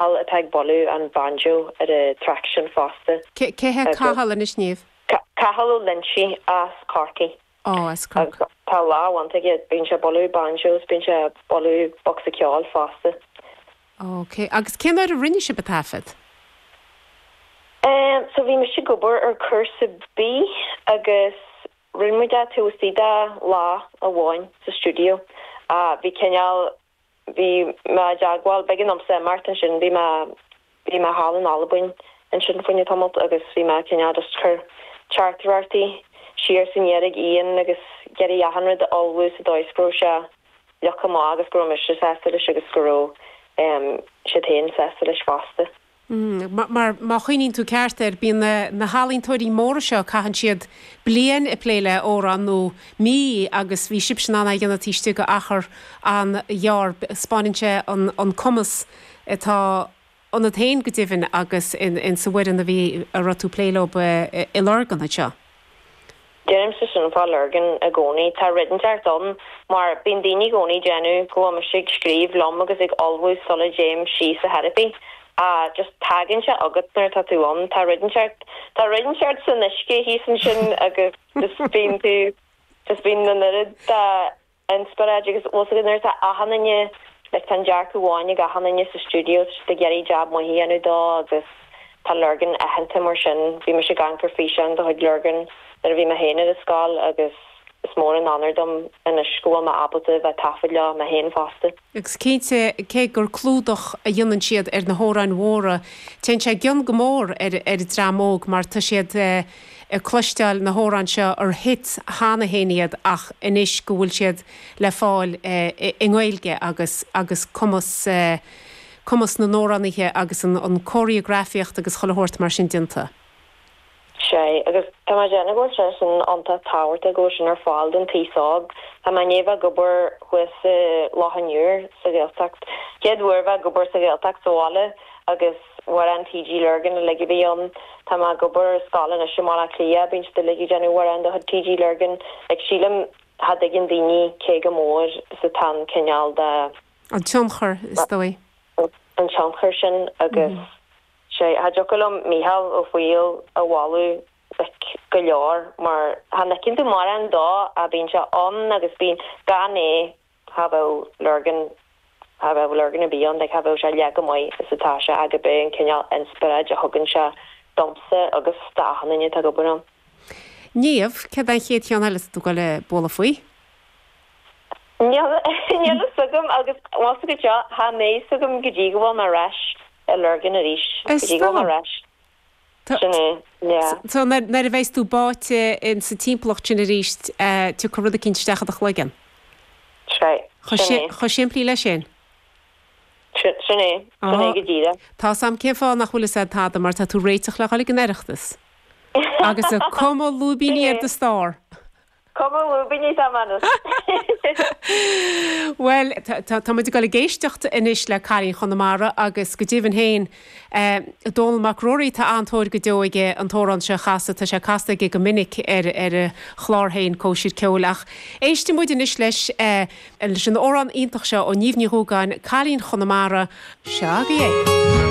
Cathal atá ag bualadh an banjo ar an traic sin fosta. Cé hé Cathal anois, Niamh? Cathal Ó Loinsigh as Corcaigh. Ó, as Corcaigh. Tá lámh mhaith aige, bíonn sé ag bualadh banjo is bíonn sé ag bualadh bocsa ceoil fosta. OK. Agus cén uair a rinne sibh an taifeadadh? So bhí mise ag obair ar Cúrsa B agus rinne muid é taobh istigh de lá amháin sa stiúideo. Bhí cineál bhí mé i dteagmháil, beagin liomsa i mbeart ansin, bhí mé, bhí mé thall in Albain ansin fá choinne tamaillt agus bhí mé cineál just ag cur teachtaireachtaí siar is aniar ann agus ag iarraidh achan rud a ullmhú sa dóigh is go raibh sé uilig go maith agus go raibh mise sásta leis agus go raibh siad féin sásta leis fosta. Mar, mar, má chuimhníonn tú ceart air, bíonn na, na healaíontóirí móra seo, caitheann siad bliain ag plé le amhrán, nó mí, agus bhí sibhse in ann a dhéanamh taobh istigh d'achar an-ghearr. Spáineann sé an, an cumas atá ionat féin go deimhin agus in, in sa bhfoireann a bhí, a raibh tú ag plé leob i Lurgan anseo. Deirimse sin fá Lurgan i gcónaí. Tá rud inteacht ann, mar bíonn daoine i gcónaí ag déanamh go bhfuil mise ag scríobh liom agus ag ullmhú sula dtéim síos ach ar dhóigh ar bith. Á, just tagann sé agat nuair atá tú ann. Tá rud inteacht. Tá rud inteacht san uisce thíos ansin agus just bíonn tú, just bíonn an oiread de, Inspioráid agus fhios agat nuair atá achan duine, like, tá an dearcadh amháin ag achan duine sa stiúideo, iad ag iarraidh jab maith a dhéanamh dó agus tá Lurgan aitheanta mar sin. Bhí mise ag amharc ar físeáin de chuid Lurgan nuair a bhí mé féin ar an scoil agus is mór an onóir dom anois go bhfuil mé ábalta bheith ag taifeadadh leofa mé féin fosta. Agus cinnte, cé gur clúdach a dhéanann siad ar na hamhráin mhóra, téann sé i gcion go mór ar an dream óg mar tá siad ag cloisteáil na hamhrán seo ar hits cheana féin iad ach anois go bhfuil siad le fáil i nGaeilge agus agus cumas cumas na n-amhránaithe agus an cóiríografaíocht agus chuile shórt mar sin déanta. Sea, agus tá mé ag déanamh go bhfuil sé sin iontach tábhachtach go bhfuil sin ar fáil don t-aos óg. Tá mé i ndiaidh bheith ag obair thuas i Loch an Iúir, sa Ghaeltacht. Chéad uair bheith ag obair sa Ghaeltacht sa bhaile agus amhráin TG Lurgan uilig a bhí ann. Tá mé ag obair ar scoil anois i mBaile Átha Cliath, bíonn siad uilig ag déanamh na hamhráin de chuid TG Lurgan. Like, sílim, cha dtuigeann daoine cé chomh mór is atá an cineál de, An tionchar, is dóigh. an tionchar sin agus. Sea, cha dtiocfadh liom Mícheál Ó Foighil a mholadh ard go leor, mar cha n-fheiceann tú mórán dó, ach bíonn sé ann agus bíonn, gan é cha bheadh Lurgan, cha bheadh Lurgan ar bith ann, like cha bheadh sé leath chomh maith is atá sé ach ab é an cineál inspioráid a thugann sé domsa agus d'achan duine atá ag obair ann. Niamh, Céard é an chéad cheann eile atá tú ag goil ag bualadh faoi? Níl fhios agam agus más go deo, tá a fhios agam go dtí go bhfuil mé ar ais i Lurgan arís, go dtí go bhfuil mé ar ais. Sin é, yeah. So nuair a bheidh's tú báite in sa timpeallacht sin arís, tiocfaidh rud eicínt isteach i do chloigeann. That's right, sin é. Chomh simplí le sin. Sin é, sin é go díreach. Tá's a'm cén fáth nach bhfuil fhios a'd tada mar tá tú ag réiteach le dhul ag an Oireachtas agus ag cumadh lúibíní ar do starr. Cumadh lúibíní atá a'm. Bhuel, tá muid ag dul ag éisteacht anois le Cailín Chonamara agus go deimhin féin, Dónall Mac Ruairí, tá an-tóir go deo aige an t-amhrán seo a chasadh, tá sé casta aige go minic ar a chlár féin, Cóisir Cheoil. Ach éistfidh muid anois leis leis an amhrán iontach seo ó Niamh Ní Dhubhgáin, Cailín Chonamara. Seo agaibh é.